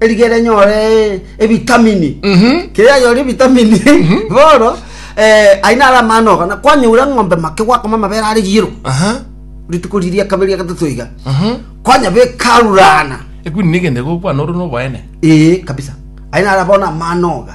Erigere nyore ebitamini. Mhm. Kere anyore ebitamini. Bono, eh, aye nare amano oga. Na kwanyeura ng'ombe make gwakoma amabere are yero. Aha. Rituko riri ria kabere ria gatato iga. Mhm. Kwanyabeka arurana. Ekwini negende gokwana oro noboene. Ee, kabisa. Aye nare abone amano oga.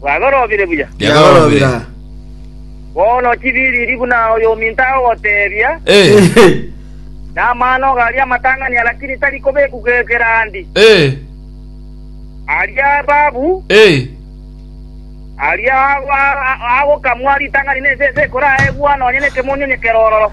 Bwagorobire buya. Yagorobire. Bono tibiriri buna oyominto agogoteebia, Eh. Namano iga aria amatang'ania, lakini tari kobekwa ekerandi. Eh. Aria ebabu, Eh. aria ago- a- agokamwa ritang'ani nense ense ekoraegwa, nonya nekemonyo onye kerororo.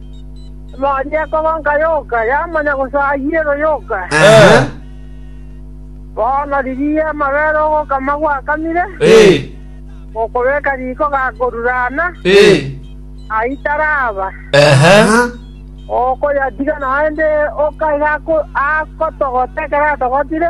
Amache akogonka yoka, yamanya gose ayio ero yoka. Bono rigiya amabere ogokama gwakamire, gokobeka riko gakorurana, ayio taraba. Okoyatiga naende oka iga akotogote ekero atogotire.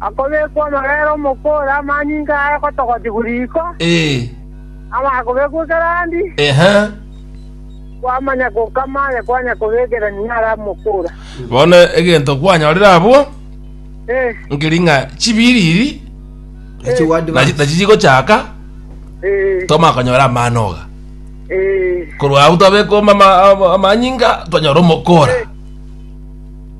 Akobekwa amabera omokori amanyinga aye gotogotigwa riko, amaya kobekwa ekero andi, kwamanya gokama aye kwanya kobekerania are amokora. Bono egento kwanyorire abwo, nkeri ng'a chibiriri nachi- nachi chigochaka Eh, twamanya konyora amano oga eh, korwa agwo twabekwa ama- ama- amanyinga twanyora omokora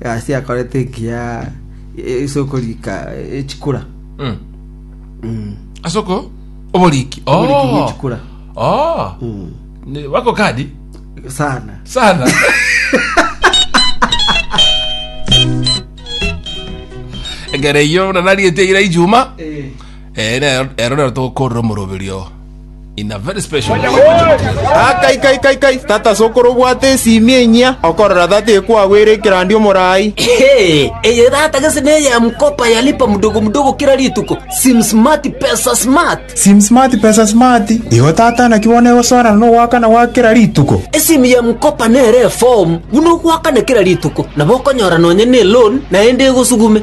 Gasi akorete engiya ase okorika eh, chikura. Mm. Mm. ase oko oboriki Oboriki bwa chikura. Oh. Mm. Ni- wako kadi Sana. sana egere iyo buna nariete ira ijuma Eh. Ere ero rero tokorora omoroberio in a very special Ah, kai kai kai kai tata sokoro obwate esimi enyia okorora tata ekwagwere ekerandi omorai Hey, eye data gese neye ya mkopa yalipa mdogo mdogo kila rituko sim smart pesa smart sim smart pesa smart igo tata naki bono egosoerana nogoakana gwa kera rituko esimu ya mkopa nere form buna ogoakana kila rituko nabo okonyora nonye ne loan naende egosugume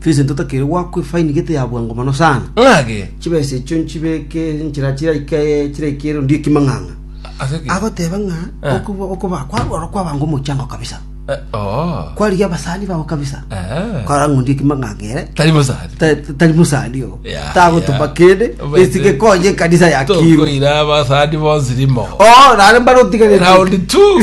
Vincent otakeire goakwa efaini gete ya bwango mono sana. Ng'ake. Chibesa echio nchibeke enchera chiraika chiraika erondo y'ekimang'ang'a. Ase ki? Agoteba ng'a Eh. okuba- okuba kwarwa oro kwabanga omochango kabisa. Eh, oh. Kwarigia abasani bao kabisa. Eh. Kora ng'ondi ekimang'ang'a ere. Tari mosari. Ta- ta- Tari mosani o. Ya, Tagotuba ya. kende. Obete- Esike konye ekanisa ya Kiru. Tokoira abasani bonsi rimo. Oh, nare mbare otigarete. Round two.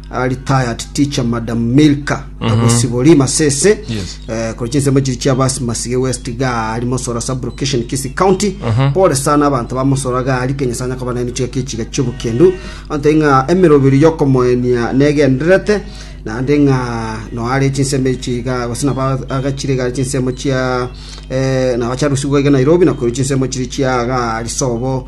a retired teacher madam milka agosibori masese Yes. eh, kore chinsemo chiri chia basi masige west gari mosora sub location kisi county pole sana abanto ba mosora gari kenya sana koba naini chiga kichiga chiobukendu ante ng'a emerobiri yokomoenia negenderete naende ng'a noare chinsemo echiga gose naba agachire gari chinsemo chia eh, nabacharusigwa iga nairobi nakori chinsemo chiri chia gari sobo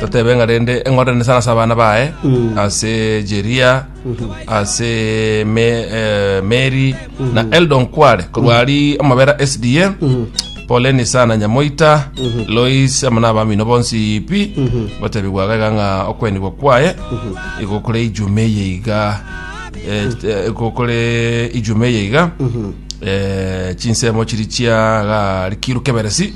totebe ng'a rende eng'ondo nesa ase abana baye ase jeria ase Me- eh, meri na eldon kware korwa ari amabera sda poleni sana nyamoita lois amana abamino bonsi pi gotebi gwaga iga ng'a okwenigwa kwaye igokore ijume eye iga eh, eh, igokore ijume eye iga eh, chinsemo chiri chia ga rikiru keberesi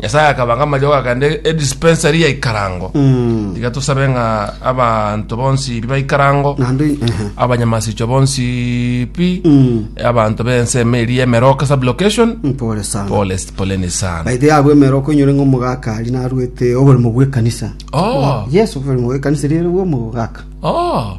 Nyasae akabanga amariogo akaenda edispensary ya ikarango Mm. iga tosabe ng'a abanto bonsi baikarango Naende ehe. abanyamasichwa bonsi pi Mm. abanto bense emeri yemeroka sublocation Mpore sana. pole poleni sana Baithe yabwe mero konyore ngo mugakari narwete oborimo bwe kanisa. oh Yesu oborimo bwe kanisa rero bwo mugaka. oh